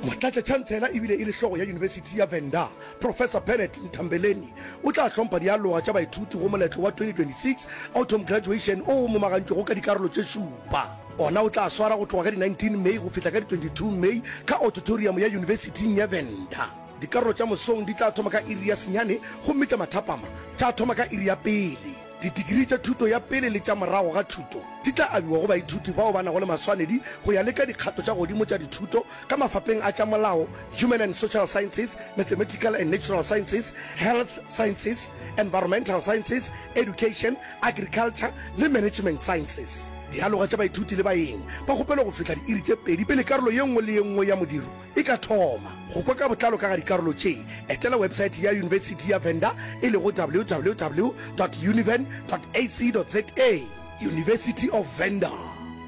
motlatšatšhantsela e bile e le hlogo ya yunibesithi ya venda professor bennet ntambeleni o tla hlompha dialoga tša baithuti go moletlo wa 2026 autumn graduation o o momagantšwego ka dikarolo tše šupa ona o tla swara go tloga ka di-19 may go fihla ka di-22 may ka auditorium ya yunibesithing ya venda dikarolo tša mosong di tla thoma ka iri ya senyane gomme tša mathapama tša thoma ka iri ya pele Didigirii tša thuto ya pele le tša morago ga thuto di tla abiwa go baithuti bao ba nago le maswanedi go ya le ka dikgato tša godimo tša dithuto ka mafapeng a tša molao, Human and Social Sciences, Mathematical and Natural Sciences, Health Sciences, Environmental Sciences, Education, Agriculture le Management Sciences. Dialoga tša baithuti le baeng ba kgopelwa go fihla diiri tše pedi pele karolo ye nngwe le ye nngwe ya modiro E ka thoma go kwa ka botlalo ka ga dikarolo tše, etela webesaete ya Yunibesithi ya Venda e lego www dot univen dot ac dot za. University of Venda,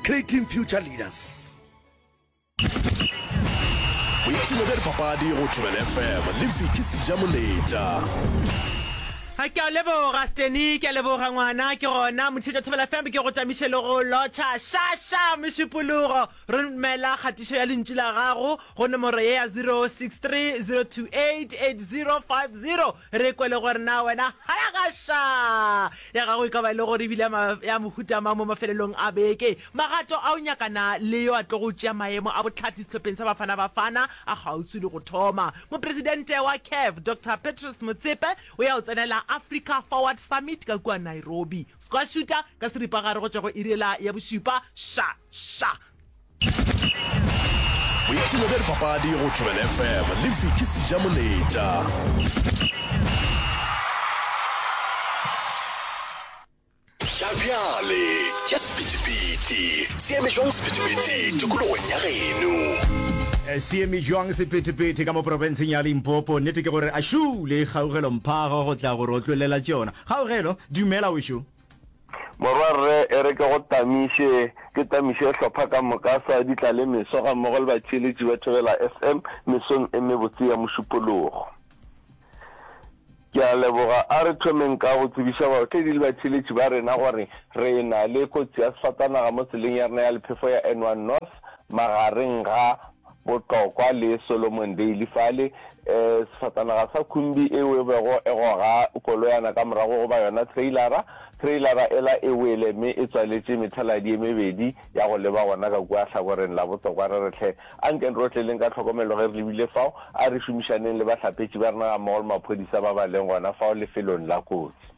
creating future leaders. Boipshino bja dipapadi go Thobela FM le Vicky Sejamoletša. ga ke a leboga steny ke a leboga ngwana ke gona mothiša thobela fm ke go tamiše le go lotšha šaša mešupologo Romela kgatišo ya lentšu la gago go nomoro ye ya 0630288050 re kwe le gore na wena Halagasha ya gago e ka ba e le gore e bile ya mohuta mang mo mafelelong a beke. Magato a o nyakana le yo a tlogo tšea maemo a bohlatli sehlopheng sa Bafana Bafana a kgauswi le go thoma. Mopresidente wa CAF, Doctor Patrice Motsepe o ya go tsenela Africa Forward Summit ka kua Nairobi. Square shooter ka seripagare go tšwa go iri ela ya bošupa. Sha! Sha! Boipshino bja dipapadi go Thobela FM le Vicky Sijamoletša. tša bjale tša sepetipeti seeme jwang sepetipeti tikologong ya geno eh, seeme jwang sepetepete ka mo porofenseng ya limpopo nnete ke gore a šule kgaugelo mphago go tla gore o tlolela tšona Kgaugelo, Dumela wešo. Morwa rre, e re ke go tamiše, ke tamiše hlopha ka moka sa Ditlale Meso ga mmogo le batšeeletši ba Thobela FM mesong e mebotse ya Mošupologo. Ke a leboga. A re thomeng ka go tsebiša baotledi le batšeeletši ba rena gore re na le kotsi ya sefatanaga mo tseleng ya rena ya lephefo ya N1 North magareng ga Botlokwa le Solomon Daly fale, eh, sefatanaga sa khumbi eo e bego e goga koloyana ka morago goba yona trailara. Trailara ela e wele mme e tswaletše methaladi e mebedi ya go leba gona ka kua hlakoreng la botokwa. Re re hle, anke re otleleng ka tlhokomelo ge re lebile fao, a re šomišaneng le bahlapetši ba rena gammogo le maphodisa ba ba leng gona fao lefelong la kotsi.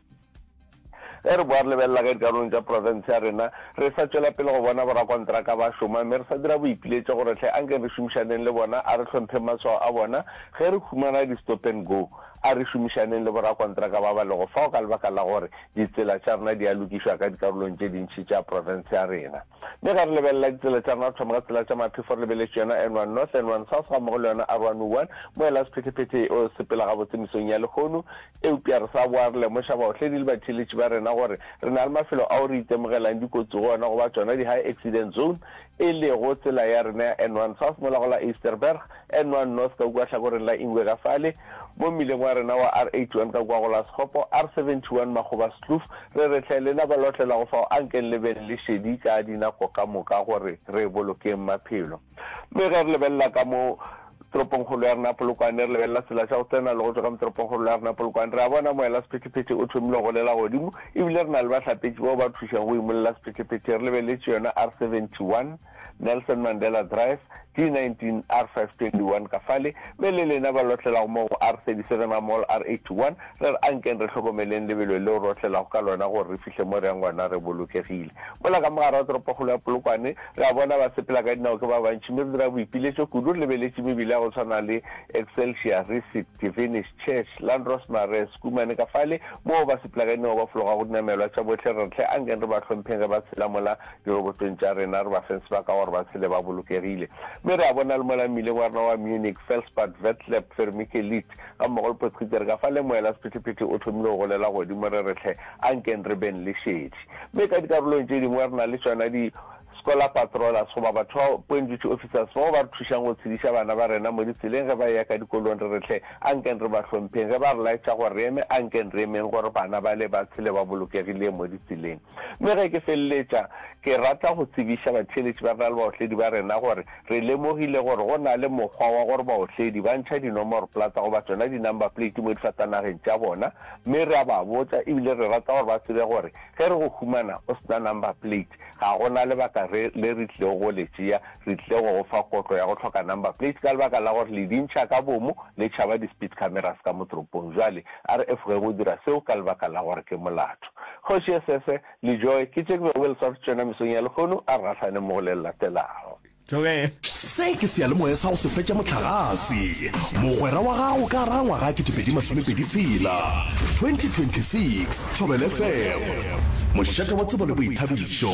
Ge re boa re lebelela ge dikarolong tša profense ya rena re sa tšwela pele go bona borakontraka ba šoma mme re sa dira boipiletšo gore hle anke re šomišaneng le bona, a re hlompheng maswao a bona ge re humana di-stop and go, a re šomišaneng le borakontraka ba ba lego fao ka lebaka la gore ditsela tša rena di a lokišwa ka dikarolong tše dintši tša profense ya rena. Mme ge re lebelela ditsela tša rena re thoma ka tsela tša Maphefo re lebeletše yona N one North, N one South gammogo le yona R one O one, mo e la sephethephethe o sepela gabotse mesong ya lehono, Eupša re sa boa re lemoša baohledi le batheeletši ba rena gore re na le mafelo ao re itemogelang dikotsi go ona go ba tšona di-high accident zone, e lego tsela ya rena ya N1 South mola go la Eysterberg, N1 North ka kua hlakoreng la Ingwe ka fale, mo mmileng wa rena wa R81 ka kua go la Sekgopo, R71 Makgoba-Skloof, re re hle lena ba lotlelago fao ankeng le beng le šedi ka dinako ka moka gore re bolokeng maphelo. Mme ge re lebelela ka mo toropongkgolo ya rena Polokwane, re lebelela tsela tša go tsena le go tšwa ka mo toropongkgolo ya rena Polokwane, re a bona moela sephethephethe o thomile go golela godimo, e bile re na le bahlapetši bao ba thušago go imolela sephethephethe. Re lebeletše yona R71, Nelson Mandela Drive, D19, R521 ka fale, mme le lena ba lotlelago moo go R37, Amol, R81, Re re, Ankeng re hlokomeleng lebelo leo re otlelago ka lona gore re fihle mo re yang gona re bolokegile. Mola ka mogare ga toropokgolo ya Polokwane, re a bona basepelakadinao ke ba bantši mme re dira boipiletšo kudu re lebeletše mebila ya go swana le Excelsior, Receipt, Divinish, Church, Landros Marais, Schoeman ka fale moo basepelakadinao ba fologago dinamelwa tša bohle. Re re, Hle ankeng re ba hlompheng ge ba tshela mola dirobotong tša rena, re ba feng sebaka gore ba tshele ba bolokegile. Mme re a bona le mola mmileng wa rena wa Munich, Felspad, Vetleb, Vermikelid, Ga mmogo le Potgieter, ka fa le moela sephethephethe o thomile go golela godimo, re re hle, ankeng re beng le šedi. Mme ka dikarolong tše dingwe re na le tšona di Scholar Patrollers goba batho ba Point Duty Officers bao ba re thušang go tshediša bana ba rena mo ditseleng ge ba eya ka dikolong, re re hle, ankeng re ba hlompheng. Ge ba re laetša gore re eme, ankeng re emeng gore bana bale ba tshele ba bolokegilee mo ditseleng. Mme ge ke feleletša, ke rata go tsebiša batheeletši ba rena le baotledi ba rena gore, Re lemogile gore go na le mokgwa wa gore baotledi ba ntšha dinomoroplata goba tsona di-number plate mo difatanageng tša bona, mme re a ba botsa ebile re rata gore ba tsebe gore ge re go humana o se na number plate, ga go na lebaka re le re tlilego go le tšea, re tlile go go fa kotlo ya go hloka number plate ka lebaka la gore le di ntšha ka bomo le tšhaba di-speed cameras ka mo toropong. Bjale a re efoge go dira seo ka lebaka la gore ke molato. Kgoši e sese. Lijoe ke tše ke bego ke le swaretse tšona mesong ya lehono, a re gahlane mo go le le latelago. Tlogela. Se ke seyalemoya sa go se fetša mohlagase. Mogwera wa gago ka gare ga ngwaga ya ketepedi masome pedi tshela, 2026, Thobelefm, mošate wa tsebo le boithabišo.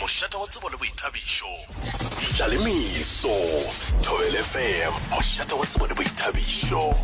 mošate wa tsebo le boithabišo. Tla le meso, Thobela FM, mošate wa tsebo le boithabišo.